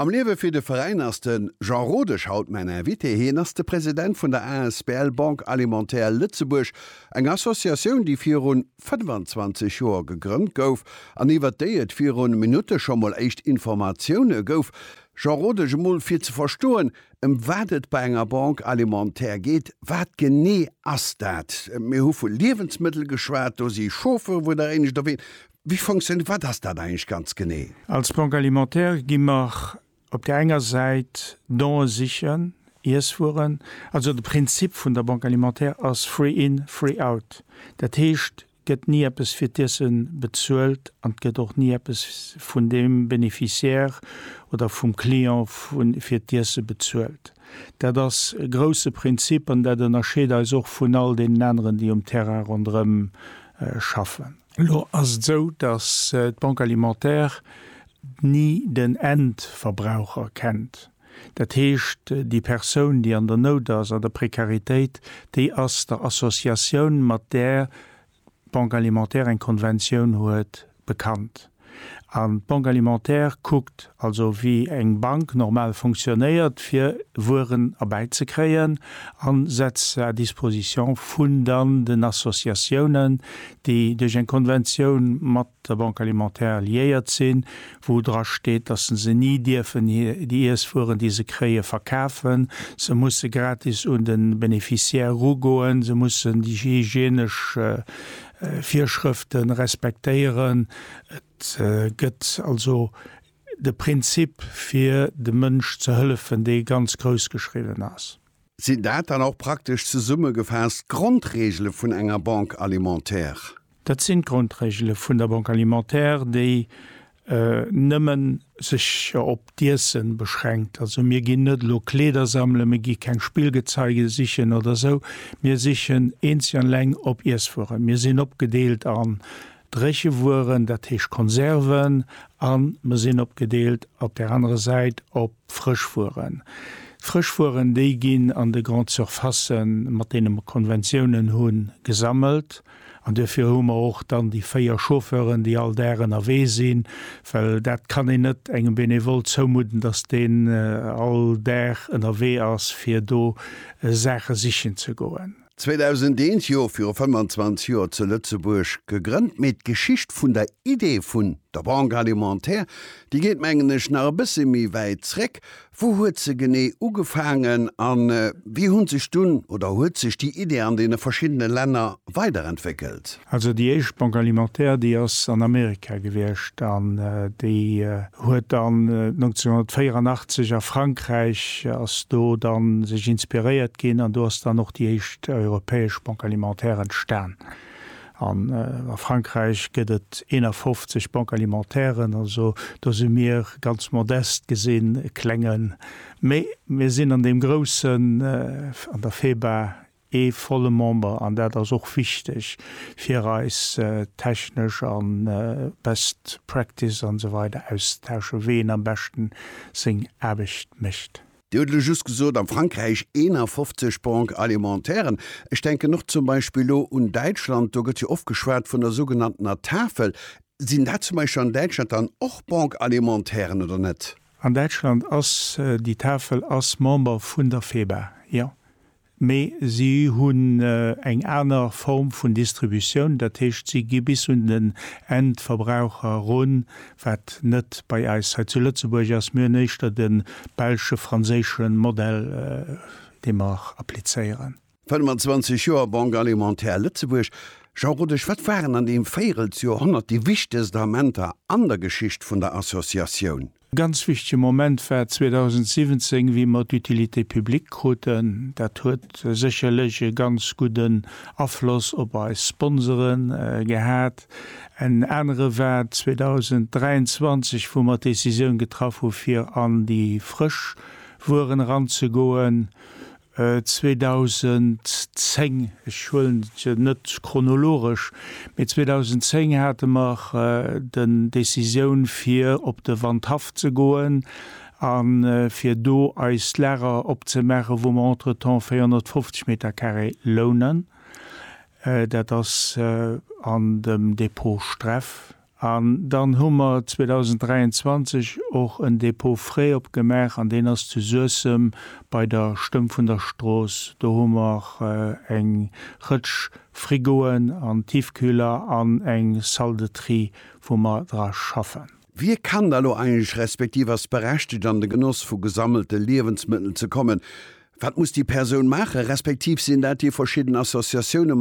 Am Liewe fir de Veräin ass de Jean Rodesch haut mäin Invité. Hien ass de President vun der asbl Banque Alimentaire Lëtzebuerg, eng Associatioun, déi virun 25 Joer gegrënnt gouf an iwwert déi et virun Minutte scho mol éischt Informatioune gouf. Jean Rodesch, emol fir ze verstoen, ëm wat et bei enger Banque Alimentaire geet, wat genee ass dat? Mir hu vu Liewensmëttel geschwat, do si Chauffere, wou der éinescht op een. Wéi funktioniert, wat ass dat eigentlech ganz genee? Als Banque alimentaire gi mer op där enger Säit Don'e sichen, Iesswueren, also de Prinzip vun der Banque alimentaire ass free in, free out. Dat heescht, gëtt ni eppes fir d'Iesse bezuelt an et gëtt och ni eppes vun deem Bénéficiaire oder vum Client fir d'Iesse bezuelt. Dat ass e grouse Prinzip an dat ënnerscheet eis och vun all deenen aneren, déi um Terrain ronderëm schaffen. Elo ass et esou, datt d'Banque alimentaire ni den Endverbraucher kennt. Dat heescht, déi Persoun, déi an der Nout ass, an der Prekaritéit, déi ass der Associatioun, mat där d'Banque alimentaire eng Konventioun huet, bekannt. An d'Banque alimentaire kuckt also wéi eng Bank normal fonctionnéiert fir Wueren erbäizekréien a setzt se à disposition vun dann den Associatiounen, déi duerch eng Konventioun mat der Banque alimentaire liéiert sinn, wou dra steet, datt se ni dierfen déi Iesswueren, déi se kréie verkafen. Se musse gratis un de Beneficiaire erugoen, se mussen déi hygienesch Virschrëfte respektéieren. Et gëtt also de Prinzip fir dem Mënsch ze hëllefen, dee ganz grouss geschriwwen ass. Sinn dat dann och praktesch zesummegefaasst d'Grondregele vun enger Banque alimentaire? Dat sinn d'Grondregele vun der Banque alimentaire, déi nëmmen sech op d'Iessen beschränkt. Also mir ginn net elo Kleeder sammelen, mir gi keng Spillgezeige sichen oder esou, mir sichen eenzeg an eleng op Iesswueren. Mir sinn opgedeelt an dréche Wueren, dat heescht Konserven, an mer sinn opgedeelt op där anerer Säit op D'Frëschwueren. D'Frëschwueren, déi ginn an de Grandes surfaces, mat deene mer Konventionen hunn, gesammelt. An duerfir hu mer och dann déi véier Chauffeuren, déi all Dag ënnerwee sinn, well dat kann een net engem Benevole zoumudden, dass deen all Dag ënnerwee ass, fir do Saache sichen ze goen. 2001, jo, viru 25 Joer zu Lëtzebuerg gegrënnt, mee d'Geschicht vun der Idee vun der Banque alimentaire, déi geet mengen ech nach e bësse méi wäit zréck. Wou huet se genee ugefaangen a wéi hu sech dunn, oder huet sech déi Idee an deene verschiddene Länner weiderentwéckelt? Also déi éischt Banque alimentaire, déi ass an Amerika gewiescht an déi huet dann 1984 a Frankräich ass do dann sech inspiréiert ginn an do ass dann och déi éischt europäesch Banque alimentaire entstan. An a Frankräich gëtt et 51 Banques alimentairen, also do si mir ganz modest gesinn e klengen, mee mir sinn an deem groussen, an der FEBA, ee volle Member, an dat ass och wichteg fir eis technesch an best practice an esou weider auszutauschen, wéi een am beschten seng Aarbecht mécht. Dir hutt elo just gesot, a Frankräich 51 Banques alimentairen. Ech denken och zum Beispill elo un Däitschland, do gëtt jo oft geschwat vun der sougenanntener Tafel. Sinn dat zum Beispill an Däitschland dann och Banques alimentairen oder net? An Däitschland ass déi Tafel ass Member vun der FEBA, jo. Mee si hunn eng aner Form vun Distributioun, dat heescht si gi bis un den Endverbraucher erun, wat net bei eis hei zu Lëtzebuerg ass. Mir hunn éischter de belsche, franséische Modell, dee mer applizéieren. 25 Joer Banque alimentaire Lëtzebuerg, Jean Rodesch, wat waren an deem Véirelsjoerhonnert déi wichtegst Amenter an der Geschicht vun der Associatioun? E ganz wichtege Moment war 2017, wéi mer d'Utilité publique kruten. Dat huet sécherlech e ganz gudden Afloss op eis Sponsore gehat. En anere war 2023, wou mer d'Decisioun getraff hu fir an déi frësch Wueren eranzegoen. 2010, ech huelen se net chronologesch, mee 2010 hate mer den Décisioun fir op de Wandhaff ze goen a fir do eist Lager opzemaache wou mer entretemps 450 Metercarré lounen. Dat ass an dem Depot Streff. An dann hu mer 2023 och en Dépôt frais opgemaach an deen ass zu Suessem bei der Stëmm vun der Strooss. Do hu mer eng Rëtsch Frigoen an Tiefkühler an eng Salle de tri, wou mer dra schaffen. Wie kann da lo eigentlech respektiv ass berechtigt an de Genoss vu gesammelte Liewensmëttel ze kommen? Wat muss déi Persoun maachen, respektiv sinn dat déi verschidden Associatiounen,